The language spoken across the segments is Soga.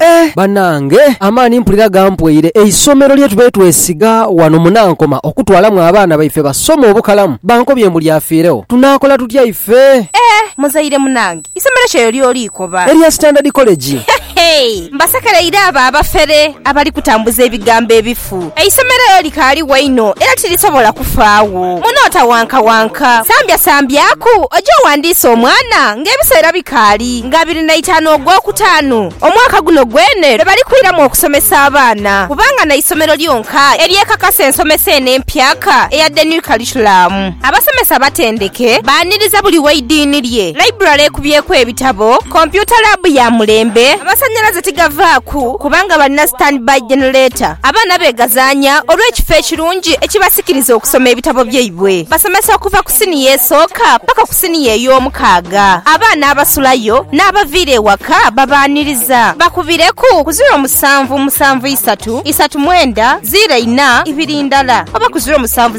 Eeh banange amaani mpulira gampweire, eisomero lyetubaire twesiga wano mu Nankoma okutwalamu abaana baife basome obukalamu bankobye mbu lyafiiregho tunakola tutya ife? Eeh muzaire munange isomero ki eryo lyoli koba? Erya Standard College. Hehe mbasekereire abo abafere abali kutambuza ebigambo ebifu. obufu. Eisomero elyo likaaligho inho era tilisobola kufaagho. Munootawankawanka. Sambyasambyaku oje owandiise omwana ng'ebiseera bikaali nga abiri na itaanu Ogwokutaanu, omwaka guno gwene lwe bali kwiramu okusomesa abaana kubanga n'eisomero lyonka eryekakasa ensomesa eno empyaka eya The New Curriculum. Abasomesa abatendeke baaniriza buli w'eidiini lye, laiburale ekubyeku ebitabo, kompyuta laabu ya mulembe, amasanhalaze tigavaaku kubanga balina stand by generator, abaana beegazaanya olw'ekifo ekirungi ekibasikiriza okusoma ebitabo byaibwe. Basomesa okuva ku siniya esooka paka ku siniya ey'omukaaga. Abaana abasulayo n'abaviira ewaka babaaniriza. Bakubireku ku ziro musanvu musanvu isatu isatu mwenda ziro ina ibiri ndala oba ku ziro musanvu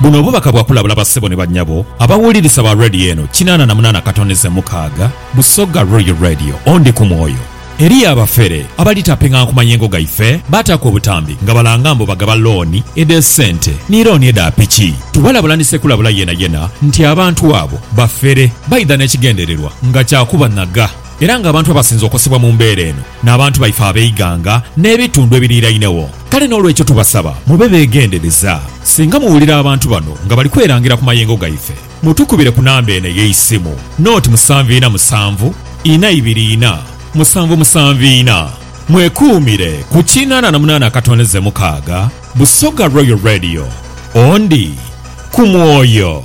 Buno bubaka bwa kulabula bassebo ni bannyabo abawulirisa ba Radio eno kinaana na munaana katonize mukaaga, Busoga Royal Radio, Ondi ku mwoyo. Eriyo abafere abali taping'anha ku mayengo gaife, baataaku obutambi nga balanga mbu bagaba looni edh'esente ni looni edha piki. Tubalabula ni ssekulabula yenayena nti abantu abo bafere, baidha n'ekigendererwa nga kya kubanhaga era ng'abantu abasinze okosebwa mu mbeera eno, n'abantu baife ab'eighanga n'ebitundu ebiriirainegho. Kale n'olwekyo tubasaba mube beegendereza. Singa muwulira abantu bano nga bali kwerangira ku mayengo gaife, mutukubire ku namba eno ey'eisimu, noti musanvu ina musanvu, ina ibiri ina, musanvu musanvu ina. Mwekuumire ku kinaana na munaana akatondeze mukaaga. Busoga Royal Radio. Ondi ku mwoyo.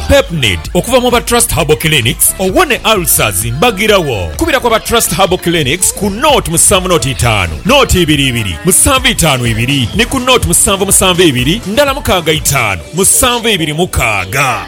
Pepnid okuva mu ba Trust Herbal Clinics owone ulcers mbagirawo. Kubira ku aba Trust Herbal Clinics ku nought musanvu nought itaanu nought ibiri ibiri musanvu itaanu ibiri ni ku nought musanvu musanvu ibiri ndala mukaaga itaanu musanvu ibiri mukaaga.